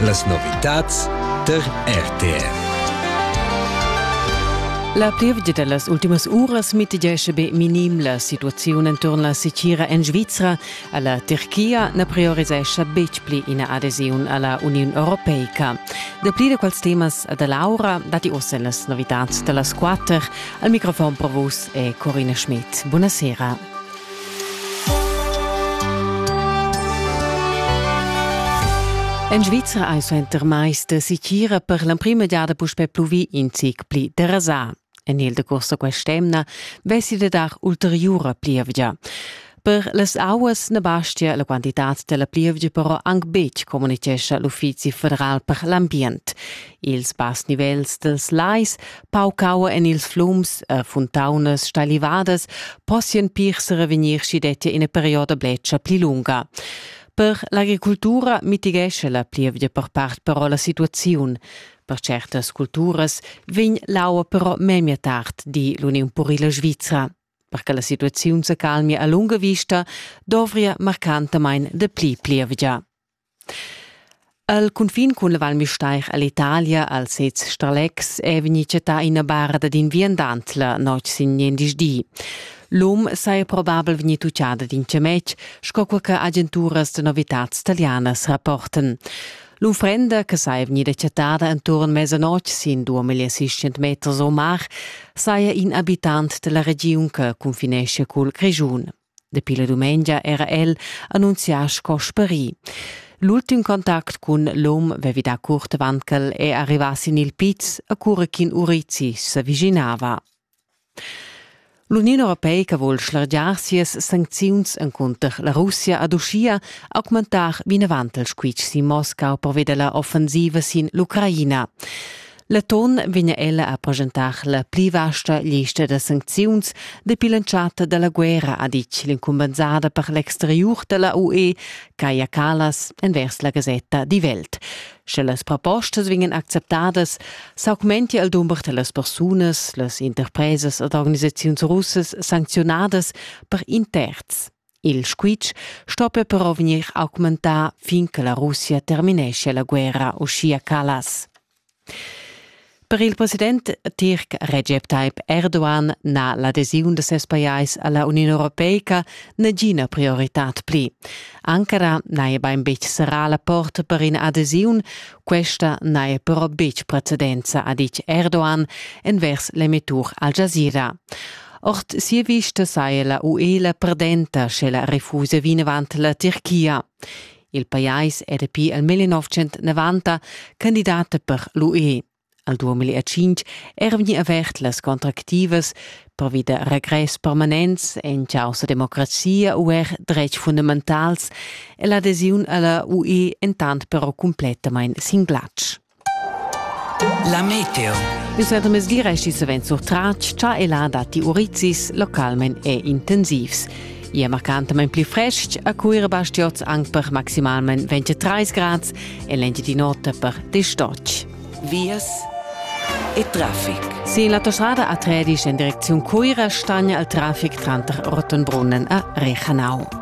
Las novitads tar RTR. La plievgia da las ultimas uras mitigesce be minim la situaziun enturn la sicira en Svizra. A la Turchia na priorisescha betg pli ina adesiun a la Uniun Europeica. Dapli da quels temas da Laura datti ossa en las novitads da las quatter. Al microfon per vus è Corina Schmidt. Buonasera. En Svizra ei suenter mais da sitgira per l'emprima giada puspei pluvì in zic pli derasà. En il decurs da quest'emna vessi da dar ulteriura plievgia. Per las auas na bastia la quantitad della plievgia però anc betg, communitgescha l'Uffizi federal per l'ambient. Ils bass nivels dels lais Pauc aua en ils flums e funtaunas stalivadas possian pir serevegnir sch'i dettia ina perioda bletscha pli lunga. Per l'agricultura mitigescha la plievgia per part però la situaziun. Per certas culturas vegn l'aua però memia tard, di l'Uniun Purila Svizra. Per che la situaziun se calmia a lunga vista, dovria marcantamain de pli plievgia. El cunfin cun la Val Müstair ell'Italia al sez Stralex è vegnì chattà ina bara dad in viandant la notg sin gliendisdì di. L'um saja probabel vegnì tuccada d'in chametg, sco quai che agenturas da novitads talianas rapportan. L'unfrenda che saja vegnida chattada enturn mesanotg sin 2600 meters o mar saja in abitant da la regiun che cunfinescia cul Grischun. Dapi la dumengia era el annunzià sco sperì. L'ultim contact cun l'um vevi da curt Wankel è arrivà sin il piz a cura ch'in urizi s'aviginava. L'Uniun Europeica vuol schlargiar sias sancziuns encunter la Russia ad uschia augmentar vinavant il squitsch sin Moscau pervia della offensiva sin l'Ucraina. Leton vegna ella a presentar la pli vasta lista da sancziuns dapi l'entschatta da la guerra, ha ditg l'incumbensada per l'exteriur da la UE, Kaja Kallas, envers la gasetta Die Welt. Sche las propostas vegnan acceptadas, s'augmentia il dumber da las persunas, las interpresas ed organisaziuns russas sancziunadas per in terz. Il squitsch stoppa però vegnir augmentà fin che la Russia termineschia la guerra, uschia Callas. Per il president tirc Recep Tayyip Erdogan n'ha l'adesiun da ses pajais a la Uniun europeica nagina prioritad pli. Ankara n'haja bain betg serrà la porta per ina adesiun, questa n'haja però betg precedenza, ha ditg Erdogan envers l'emettur Al Jazeera. Ord sia vista saja la UE la perdenta, sche la refusa vinavant la Tirchia. Il pajais è dapi il 1990 candidata per l'UE. Al 2005 era vegnì avert las contractivas pervi da regress permanents en causa democrazia u er dretgs fundamentals e l'adesiun alla UE entant però cumplettamain sin glatsch. La meteo. Uss è mesgira chi savens surtratg cha e là datti urizis localment e intensivs. Ia marcantamain pli frestg a Cuira Bastiots anc per maximalment 23 grads e l'Engiadin'Ota per distocc. Vias e traffic. Sin l'autostrada a Tredisch en direcziun Cuira stagna il traffic tranter Rottenbrunnen a Rechanau.